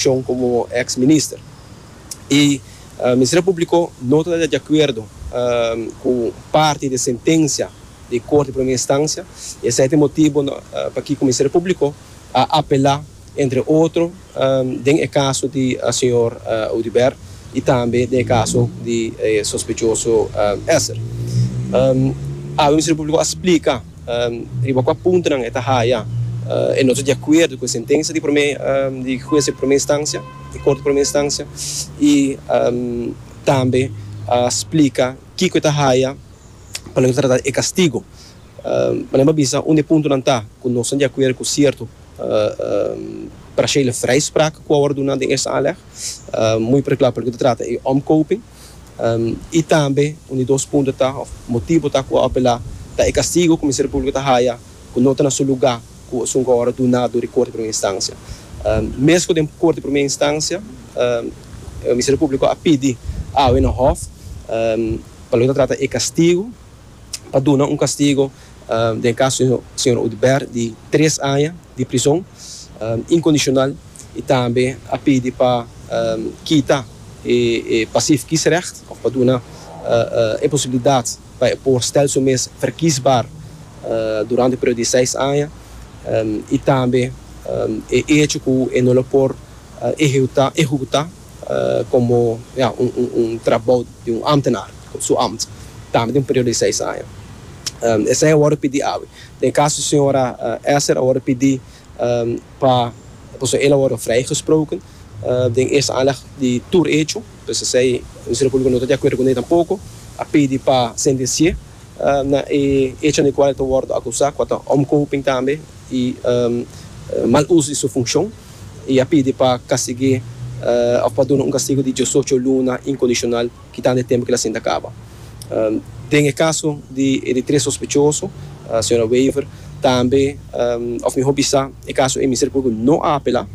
Shon komo ex minister y Ministerio Publico no ta de acuerdo cu parti de sentencia di Corte di Primera Instancia y esey ta e motibo pakico Ministerio Publico a apela entre otro den e caso di señor Audibert y tambe den e caso di e sospechoso Esser. Awe Ministerio Publico a splica. Riba kua puntonan e ta haya e no ta di akuerdo ku e sentensia di hues di promé instansia, di kort di promé instansia, i tambe splika kiko e ta haya pa no trata e kastigu. Panen pa bisa unda e puntonan ta ku nos ta di akuerdo ku sierto parashele vrijspraak ku a wòrdu duna den Eerste Aanleg, muy por e kla pa loke ta trata e omkoping. I tambe un di dos punto ta òf motibu ta ku a apelá ta e kastigu ku Ministerio Públiko ta haya ku no ta na su lugá ku esun ku ora duná dor di Korte di Primera Instansia. Mezko den Korte di Primera Instansia Ministerio Públiko a pidi awe na hòf pa loke ta trata e kastigu pa duna un kastigu Den kaso di señor Udbert di tres aña di prison incondicional y tambe a pidi pa kita e passief kiesrecht of pa duna e posibilidad pa e por stel su mes verkiesbaar durante e periodo di seis aña y tambe e hecho cu e no lo por ehecuta. komo un trabou di un ámtenar op su ámt, tambe den un periodo di seis aña. Esei a wòrdu pidí awe. Den e kaso di señora Esser a wòrdu pidí pa, pasobra el a wòrdu vrijgesproken den eerste aanleg di tur echo, dus esei Ministerio Públiko no ta di akuerdo kuné tampoko, a pidi pa sentensié na e echonan di kual el ta wòrdu akusá, ku a ta omkoping tambe. y mal uso di su funcion y a pidi pa castig'é of pa duna un castigo di diosocho luna incondicional kitando e tempo ki el a sinta caba. Den e caso di e di tres sospechoso, Sra. Wever, tambe of mihor bisa e caso ey Ministerio Publico no a apela,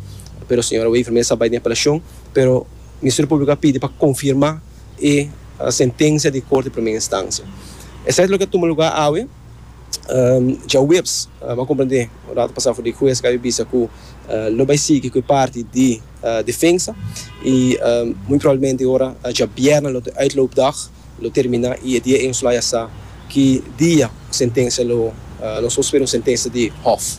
pero Sra. Wever mes a bay den apelacion, pero Ministerio Publico a pidi pa confirma e sentencia di Corte di Primer Instancia. Esai ta loke a tuma lugar awe. Djaweps a komprendé un rato pasá ku di hues kabe bisa ku lo bai sigui ku e parti di defensa i muy probablemente ora dja bierna lo uitloopdag lo terminá i e dia Eenstra ya sa ki dia sentensia lo nos por spera un sentensia di hof.